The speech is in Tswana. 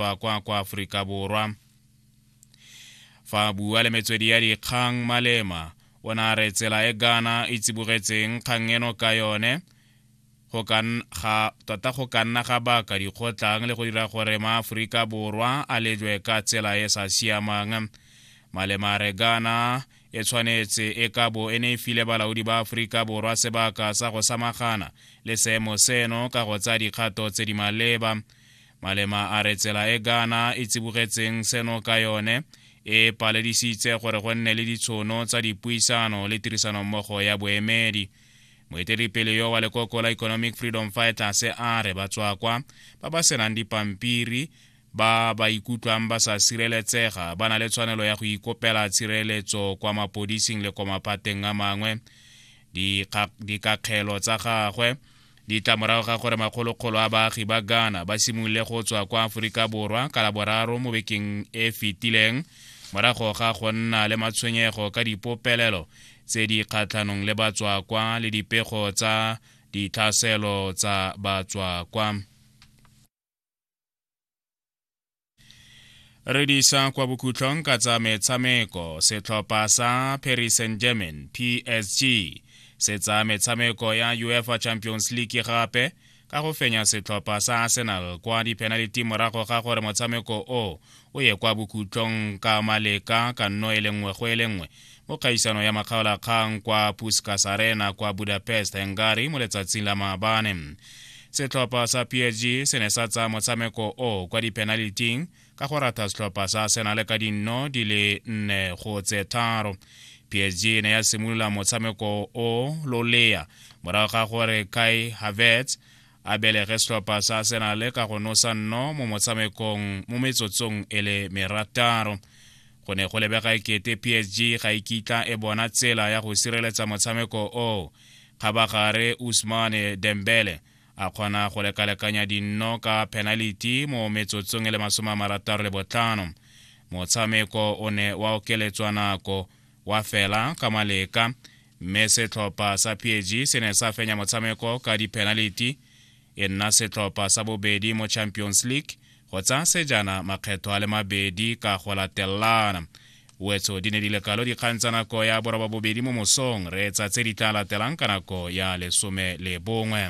tswa kwa kwa aforika borwa fa a bua le metswedi ya dikgang malema o ne a re tsela e ghana e tsibogetseng kgang eno ka yone go ka ga tota go ka nna ga baka dikgotlang le go dira gore maaforika borwa a lejwe ka tsela e sa siamang malema re gana e tshwanetse e ka bo e ne e file balaodi ba aforika borwa sebaka sa go samagana le seemo seno ka go tsaya dikgato tse di maleba malema a re tsela e ghana e tsibogetseng seno ka yone e paledisitse gore go nne le ditshono tsa dipuisano le tirisanommogo ya boemedi moeteledipele yo wa lekoko la economic freedom fighters a re batswakwa ba ba senang dipampiri ba ba ikutlwang ba sa sireletsega ba na le tshwanelo ya go ikopela tshireletso kwa mapodising le kwa maphateng a mangwe dikakgelo tsa gagwe di tla morago ga gore makgolokgolo a baagi ba ghana ba simolole go tswa kwa aforika borwa ka laboraro mo bekeng e fetileng morago ga go nna le matshwenyego ka dipopelelo tse di kgatlhanong le batswakwa le dipego tsa ditlhaselo tsa batswakwa re di isa kwa bokhutlhong ka tsa metshameko setlhopha sa paris saint german psg se tsa metshameko ya uefa champions league gape ka go fenya setlhopha sa arsenal kwa dipenaliti morago ga gore motshameko o o ye kwa bokhutlong ka maleka ka nno e le nngwe go e le nngwe mo kgaisano ya makgaolakgang kwa puskas arena kwa budapest hungary mo letsatsing la maabane setlhopha sa psg se ne sa tsaya motshameko o kwa dipenaliting ka go ratha setlhopha sa arsenal ka dinno di le nne go tse tharo psg e ne ya simolola motshameko o lolea morago ga gore kai havertz a belege setlhopha sa arsenale ka go nosa nno mo motshamekong mo metsotsong e le merataro go ne go lebega ekete psg ga e kitla e bona tsela ya go sireletsa motshameko o kgabagare usmane dembele a kgona go lekalekanya dinno ka penaliti mo metsotsong e le masome a marataro le botlhano motshameko o ne wa okeletswa nako wa fela ka maleka mme setlhopha sa pg se ne sa fenya motshameko ka di-penality e nna setlhopha sa bobedi mo champions league go tsaya sejana makgetho a le mabedi ka go latelana wetso di ne di lekalo dikgang tsa nako ya boroba bobedi mo mosong re etsa tse di tla latelang ka nako ya lesome le bongwe